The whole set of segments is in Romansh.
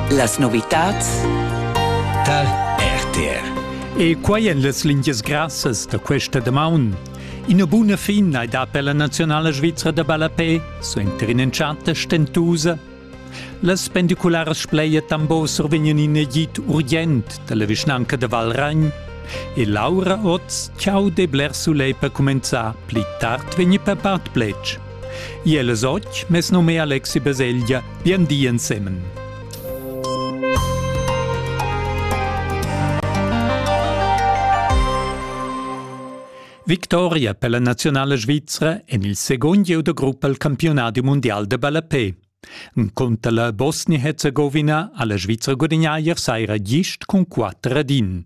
Las novitads tar RTR. E quai en las lingias grassas da questa damaun. Ina buna fin hai dà per la nazionala svizra da ballapè, suenter in'entschatta stentusa. Las pendicularas Spleia Tambos survegnan in agid urgent dalla vischnanca da Valragn e Laura Oz, ciao de bler sulei per comenzar, pli tard vegni per part plec. Iel es och, mes num è Alexi Baselgia, bien di ensemen. Victoria per la nazionale svizzera en il secondo gieu de gruppa al campionato mondial de ballapé. Conta la Bosnia-Herzegowina alla Svizzera guadagna ier saira gist con 4 ad 1.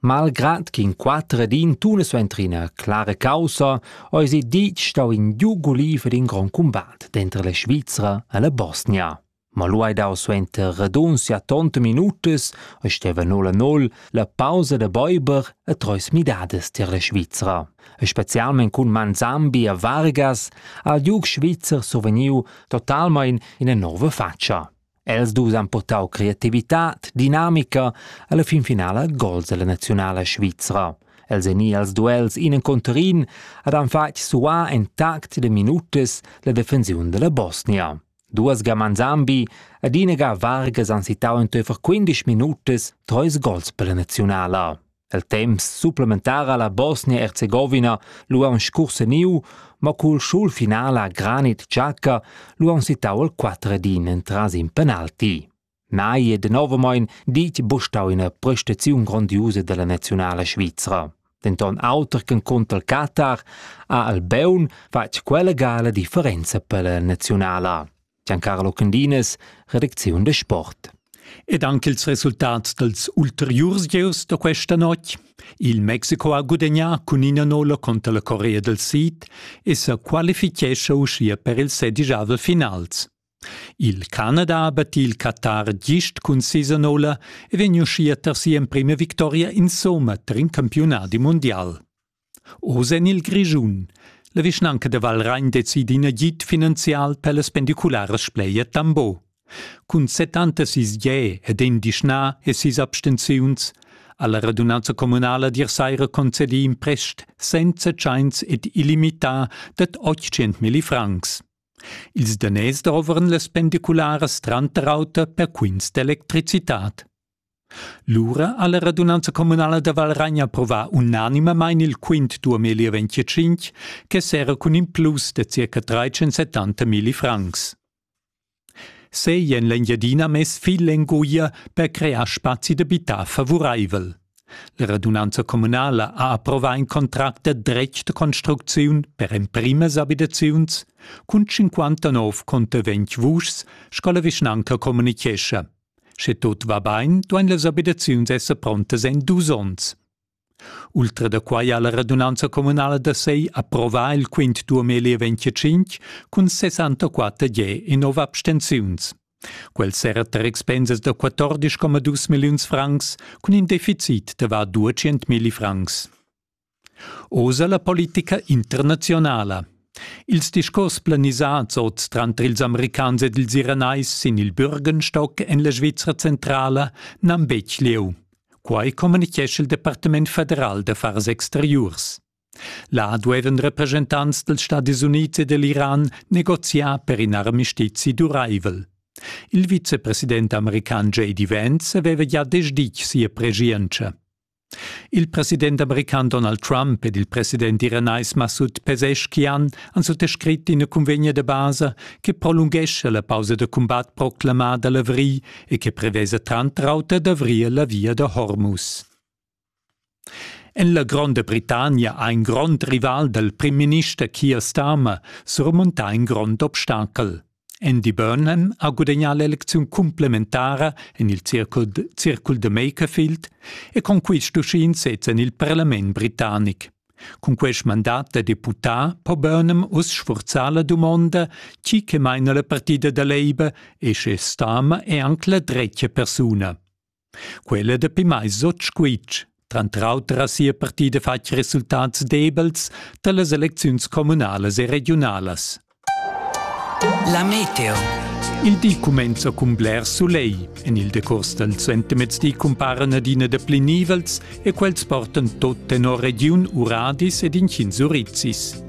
Malgrad ch'in quatter ed in tuna suenter ina clara caussa eisi ditg stau in giug guliv ed in grond cumbat denter la Svizra e la Bosnia. Ma lu hai dau suenter radunzia tonta minutas e steva 0-0 la pausa da Bäuber e treis midadas tier la Svizra. E specialment cun Manzambi e Vargas ha il giug svizzer survegniu totalmein ina nova fatscha. Els dus han purtau creativitad, dinamica alla fin finala gols ella naziunala svizra. Els ein i als duels in encunter in ed han fatg suar en tact de minutas la defensiun della Bosnia. Duas gaman Zambi ed ina ga Vargas han sittau enteifer 15 minutas treis gols per la naziunala. El temps supplementar ha la Bosnia-Erzegovina lu aunc scurseniu, mo cul schul final a Granit Xhaka lu aunc sittau il quatter ed in entras in penalti. Mai e denovamein ditg bustau ina prestaziun grondiusa dalla nazionala svizra. Denton auter che conter il Qatar ha Albeun fatg quella gala differenza per la nazionala. Giancarlo Cundines, redacziun de Sport. Ed anche il resultat dels ulteriurs gieus da questa notg. Il Mexico ha gudagnà cun ina nolla contro la Corea del Sid e se qualifichescha uschia per il sedigiavel finals. Il Canada ha battì il Qatar gist cun sisa nolla e vegn uschia ter sia emprima victoria insomma ter in campiunadi mondial. Oz en il Grischun. La vischnanca da Valragn decidi in agid finanzial per las pendicularas Spleia Tambo. Cun 76 ge ed in dischna e sis abstenziuns ha la radunanza communala dir saira concedi in prest senza tschains ed illimità dad 800.000 francs. Ils danès dovran las pendicularas tranter auter per quints d'electricitad. Lura ha la radunanza communala da Valragn approvà unanimamain il quint duamilli venticinc che serra cun in plus da circa 370 milli francs. Sei en l'Engiadina mess fil enguia per crear spazi d'abitar favuraivel. La radunanza communala ha approvà in contract da dretg da construcziun per emprimas abitaziuns cun 59 conter 20 vuschs, sco la vischnanca communichescha. Sche tut va bain, duain las abitaziuns esser prontas en dus onns. Ultra da quai ha la radunanza communala da sei approvà il quint 2025 cun 64 ge e nov abstenziuns. Quel serra tar expensas da 14,2 milliuns francs cun in deficit da var 200 milli francs. Oz ha la politica internazionala. Ils discurs planisads oz tranter ils Americans ed ils Iranais sin il Bürgenstock en la Svizra centrala n'han betg lieu. Quai communitgescha il Departament federal d'affars exteriurs. Là duevan representants dals Stadis Unids e dell'Iran negoziar per in armistizi duraivel. Il vicepresident american JD Vance aveva gia desditg sia preschientscha. Il president american Donald Trump ed il president iranais Massoud Pezeshkian han suttascrit ina cunvegna da basa che prolunghescha la pausa da cumbat proclamada a l'avrigl e che prevesa tranter auter d'avrir la via da Hormuz. En la Gronda Britannia ha in grond rival dal primminister Keir Starmer surmontà in grond obstacel. Andy Burnham ha gudagnà l'elecziun cumplementara en il circul, circul da Makerfield e con quist uschin sezza en il parlament britannic. Cun quest mandat da deputà po Burnham uss sfurzar la dumonda chi che maina la partida da Labour e sche stama è anche la dretga persuna. Quella dapi mais otg squitsch. Tranter auter ha sia partida fatg resultats debels da las elecziuns communalas e regiunalas. La meteo. Il di cumenza cun bler sulegl. En il decurs dal suentermezdi cumparan adina dapli nivels e quels portan tot tenor regiun Uradis ed inchins urizis.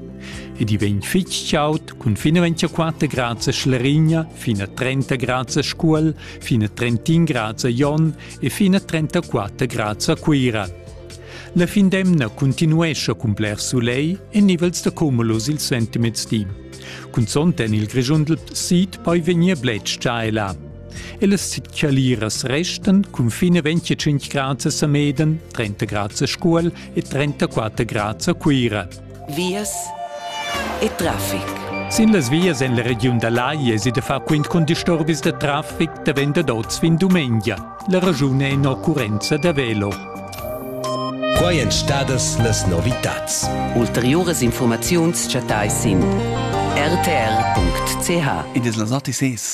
Ed i vegn fitg chaud cun finalmente 4 grads a Schlerigna, fino a 30 grads a Scuol fine 31 grads a Jon e fine 34 grads a Cuira. La fin d'emna continuescha cun bler soleil e nivels da cumulos il sentimets di. Cunzont en il Grischundel sid poi vegnir bletschà e là. E las caliras restan cun fine 25 grads a Sameden, 30 grads a Scuol e 34 grads a Cuira. vias e traffic. Sin las vias en la regiun da Lai esi da far quint cun disturbis da traffic davent dad oz fin dumengia. La raschun è in'occurrenza da velo. Quai èn stadas las novitads. Ulteriuras informaziuns chattais sin rtr.ch. Id es las ATCs.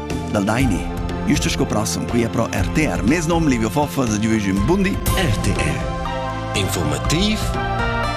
dal Daini. Isto sco prossum qui pro RTR. Mes nom Livio Foffa, da giuvegium bundi. RTR. Informativ